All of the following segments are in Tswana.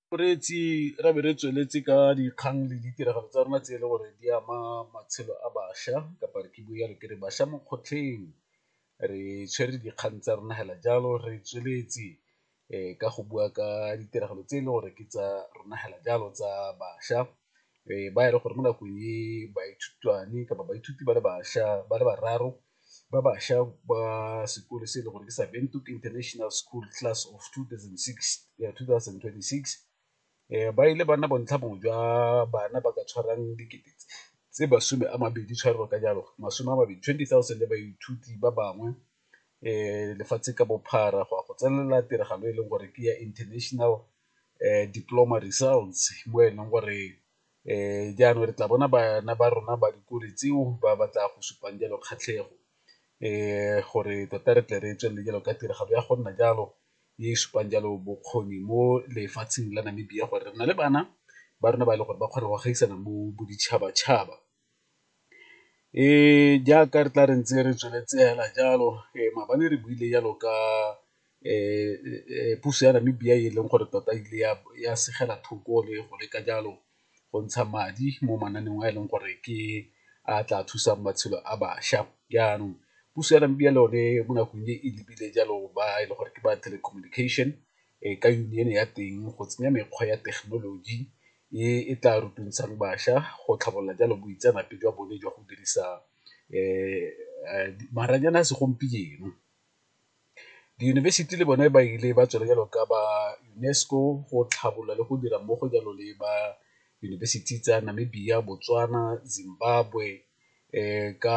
Boreetsi re be re tsweletse ka dikgang le ditiragalo tsa rona tse e le gore di ama matshelo a bašwa kapa re ke bua jalo ke re bašwa mo kgotlheng, re tshwere dikgang tsa rona fela jalo re tsweletse ka go bua ka ditiragalo tse e le gore ke tsa rona fela jalo tsa bašwa ba e leng gore mo nakong e baithutwane kapa baithuti ba le bašwa ba le bararo ba bašwa ba sekole se e le gore ke sa Windhoek International School Class of 2026 um ba ile ba nna bontlhabongwe jwa bana ba ka tshwarang dikete tse masome a mabedi tshwarelo ka jalo masome a mabedi 20 000 le baithuti ba bangwe um lefatshe ka bophara go ya go tsenelela tiragalo e leng gore ke ya international um diploma results mo e leng gore jaanong re tla bona bana ba rona ba dikole tseo ba ba tla go supang jalo kgatlhego gore tota re tle re tswelele jalo ka tiragalo ya go nna jalo e e supang jalo bokgoni mo lefatsheng la Namibia gore re na le bana ba rona ba e leng gore ba kgona go gaisana mo boditšhabatšhaba. Jaaka re tla re ntse re tsweletse fela jalo maabane re buile jalo ka puso ya Namibia e leng gore tota ile ya segela thoko le go leka jalo go ntsha madi mo mananeong a e leng gore ke a tla thusang matshelo a bašwa. Jaanong puso ya Namibia le yone mo nakong e e lebile jalo ba e le gore ke ba telecommunication ka union-e ya teng go tsenya mekgwa ya thekenoloji e e tla rotloetsang bašwa go tlhabolola jalo boitseanape jwa bone jwa go dirisa maranyane a segompieno. Diyunibesithi le bone ba ile ba tswela jalo ka ba UNESCO go tlhabolola le go dira mmogo jalo le ba yunibesithi tsa Namibia, Botswana, Zimbabwe ka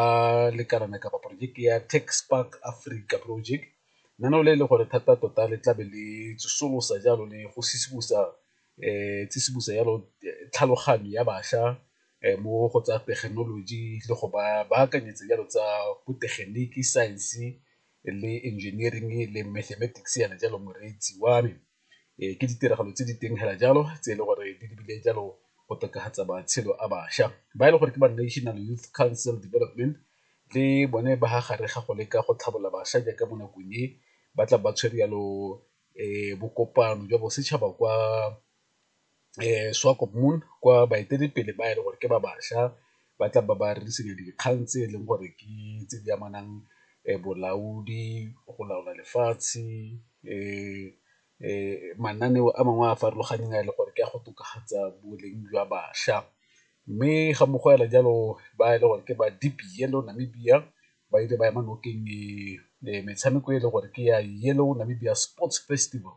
lekalana kapa porojeke ya Tech Spark Africa project, lenaneo le e le gore thata tota le tlabe le tsosolosa jalo le go . tsisimosa jalo tlhaloganyo ya bašwa mo go tsa thekenoloji le go ba baakanyetsa jalo tsa botegeniki, science le engineering le mathematics yana jalo moreetsi wa me. Ke ditiragalo tse di teng fela jalo tse e le gore di lebile jalo go tokafatsa matshelo a bašwa ba e leng gore ke ba National Youth Council Development le bone ba fa gare ga go leka go tlhabolola bašwa jaaka mo nakong e ba tla ba tshwere jalo bokopano jwa bosetšhaba kwa Swakopmund kwa baeteledipele ba e leng gore ke ba bašwa ba tla ba ba rerisediwa dikgang tse e leng gore ke tse di amanang bolaodi, go laola lefatshe mananeo a mangwe a a farologaneng a e leng gore ke a go tokafatsa boleng jwa bašwa. Mme ga mmogo fela jalo ba e leng gore ke ba Namibia ba ile ba ema nokeng metshameko e le gore ke ya Yellow Namibia Sports Festival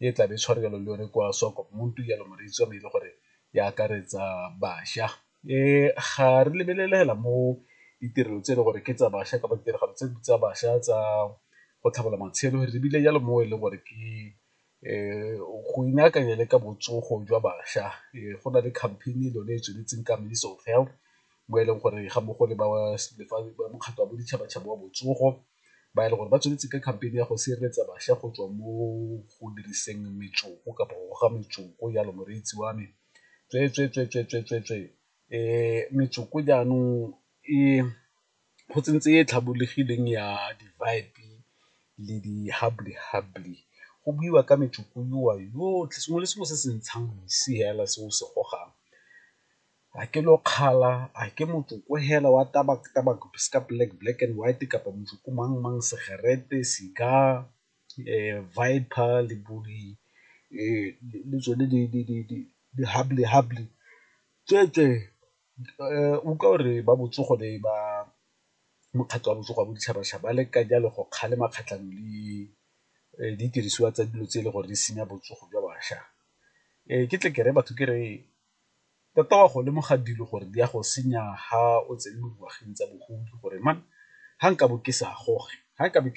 e tla be e tshware jalo le yone kwa Swakopmund jalo moreetsi wa me e le gore e akaretsa bašwa. um ga re lebelelela mo ditirelo tse e le gore ke tsa bašwa kapa ditiragalo tse tsa bašwa tsa go tlhabolola matshelo ebile jalo mo e leng gore ke go inaakanya le ka botsogo jwa bašwa go na le campaign-e e lone e tsweletseng ka Ministry of Health mo e leng gore ga mmogo le ba mokgatlho wa boditšhabatšhaba wa botsogo ba e leng gore ba tsweletse ka campaign-e ya go sireletsa bašwa go tswa mo go diriseng metsoko kapa go goga metsoko jalo moreetsi wa me tsweetsweetsweetsweetswee metsoko jaanong e go tsentse e tlhabologileng ya le di go buiwa ka metsotso yotlhe sengwe le sengwe se se ntshang mosi fela se o se gogang, a ke lokgala, a ke motsoko fela wa se ka black black and white kapa motsoko mang mang segerete, cigar, le bo di le tsone di tsweetswee. Utlwa gore ba botsogo le ba mokgatlho wa botsogo wa boditšhabatšhaba ba leka jalo go kgalema kgatlhanong le didirisiwa tsa dilo tse e le gore di senya botsogo jwa bašwa. Ke tle ke re batho ke re tota wa go lemoga dilo gore di a go senya ha o tsene mo dingwageng tsa bogodi gore ga nka bo ke sa goge ga nka bo ke.